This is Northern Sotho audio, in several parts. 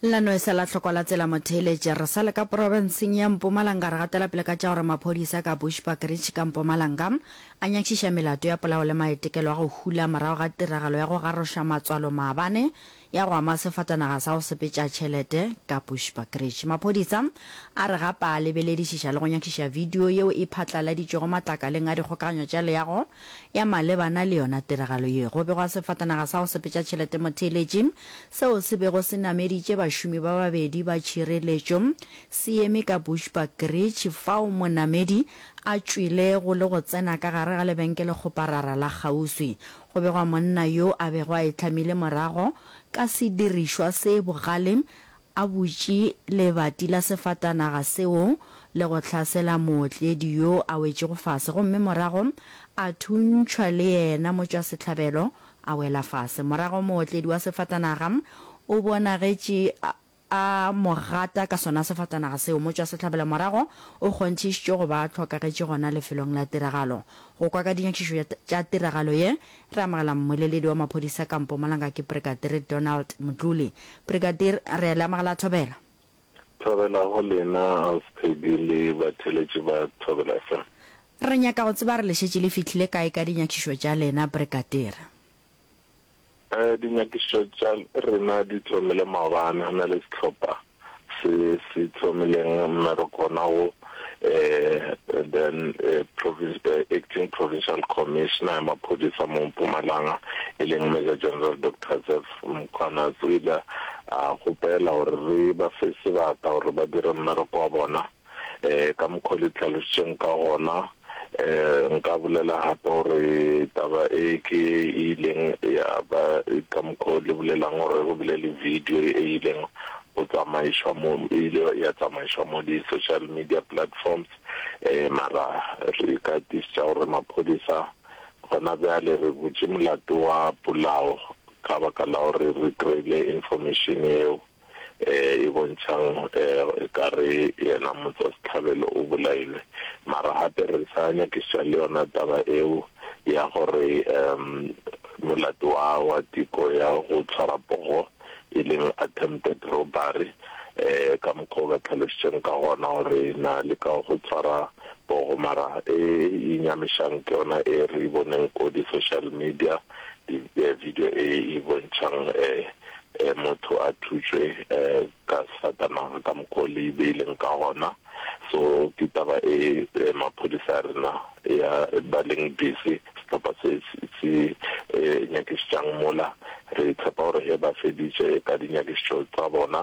La no esa la hlokwa la tsela motheeletša. Re sa le ka profenseng ya Mpumalanga re gatela pele ka tša gore maphodisa ka Bushbuckridge ka Mpumalanga a nyakišiša melato ya polao le maetekelo a go hula morago ga tiragalo ya go garoša matswalo maabane ya go ama sefatanaga sa go sepetša tšhelete ka Bushbuckridge. Maphodisa a re gape a lebeledišiša le go nyakišiša video yeo e phatlaladitšwego matlakaleng a dikgokaganyo tša leago Ya malebana le yona tiragalo ye, go begwa sefatanaga sa go sepetša tšhelete motheeletši seo se bego se nameditše bašomi ba babedi ba tšhireletšo se eme ka Bushbuck Ridge fao monamedi a tšwilego le go tsena ka gare ga lebenkele-kgoparara la kgauswi. Go begwa monna yo a bego a e hlamile morago ka sedirišwa se bogale A butše lebati la sefatanaga seo le go hlasela mootledi yo a wetšego fase gomme morago a thuntšhwa le yena motšwasehlabelo a wela fase. Morago mootledi wa sefatanaga o bonagetše a mo gata ka sona sefatanaga seo. Motšwasehlabelo morago o kgonthišitšwe go ba a hlokagetše gona lefelong la tiragalo. Go kwa ka dinyakišišo tša tiragalo ye Re amogela mmoleledi wa maphodisa ka Mpumalanga ke Brigadire Donald Motluli. Brigadire, re a le amogela Thobela. Thobela go lena Auspedi le batheeletši ba Thobela FM. Re nyaka go tseba re le šetše le fihlile kae ka dinyakišišo tša lena, Brigadire? Dinyakišišo tša rena di thomile maabane go na le sehlopha se se tlhomileng mme re kgona go um then um acting provincial commissioner ya maphodisa mo Mpumalanga e leng Major General Doctor Zeph Mkhwanazi o ile a kgopela gore re ba fe sebata gore ba dire mmereko wa bona. Ka mokgwa o le tlhalositšeng ka gona, nka bolela gape gore taba e ke e ileng ya ba ka mokgwa o le bolelang gore go bile le video e ileng go tsamaišwa mo, e ile ya tsamaišwa mo di-social media platforms. Mara re ka tiišetša gore maphodisa gona bjale, re butše molato wa polao ka baka la gore re kry-ile information yeo. um e bontšhang um ekare yena Motswasetlhabelo o bolailwe. Mara gape re sa nyakišiša le yona taba eo ya gore um molato wa wa teko ya go tshwara pogo, e leng attempted robbery, um ka mokgwa o ba tlhalošitšeng ka gona gore na le ka go tshwara pogo. Mara e e nyamišang ke yona e re e boneng ko di-social media, video e e bontšhang um Ge motho a thutšwe ka safatanaga ka mokgwa o le e beileng ka gona, so ke taba e maphodisa a rena ya ba leng busy, sehlopha se se nyakišitšang mola. Re tshepa gore ge ba feditše ka dinyakišitšo tsa bona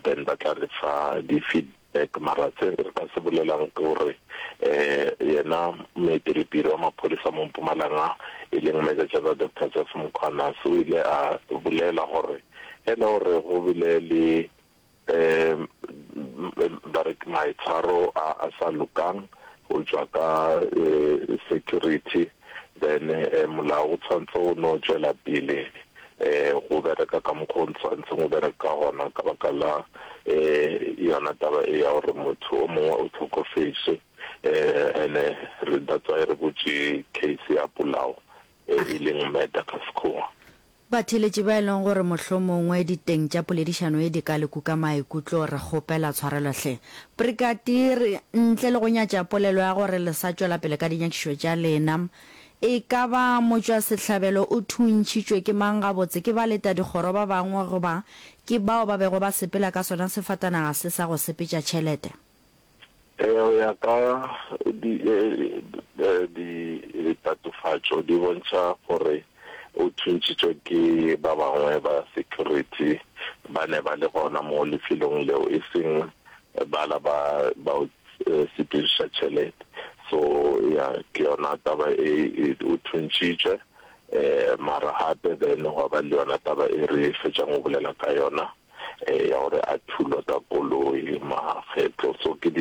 then ba tla re fa di feed. Beck, mara se re ka se bolelang ke gore yena moetelepele wa maphodisa mo Mpumalanga e leng Major General Doctor Jeff Mkhwanazi o ile a bolela gore e le gore go bile le ba re ke maitshwaro a a sa lokang go tšwa ka security then molao o tshwanetse o no tšwela pele go bereka ka mokgwa o ntshwantseng o bereka ka gona ka baka la yona taba e ya gore motho o mongwe o tlhokofetše ene re that's why re botše case ya polao e leng murder ka sekgowa Batheeletši ba e leng gore mohlomongwe diteng tša poledišano ye di ka le kuka maikutlo, re kgopela tshwarelo hle. Brigadir, ntle le go nyatša polelo ya gore le sa tšwela pele ka dinyakišo tša lena, e ka ba motšwasehlabelo o thuntšhitšwe ke mang gabotse, ke baletadikgoro ba bangwe goba ke bao ba bego ba sepela ka sona sefatanaga se sa go sepetša tšhelete? Ee, go ya ka di, di, ditatofatšo di bontšha gore o thuntšitšwe ke ba bangwe ba security ba ne ba le gona mo lefelong leo, e seng bala ba ba o sepediša tšhelete. So ya ke yona taba e, o thuntšitšwe. Mara gape then gwa ba le yona taba e re fetšang go bolela ka yona, ya gore a thulwa ka koloi makgetlo so ke di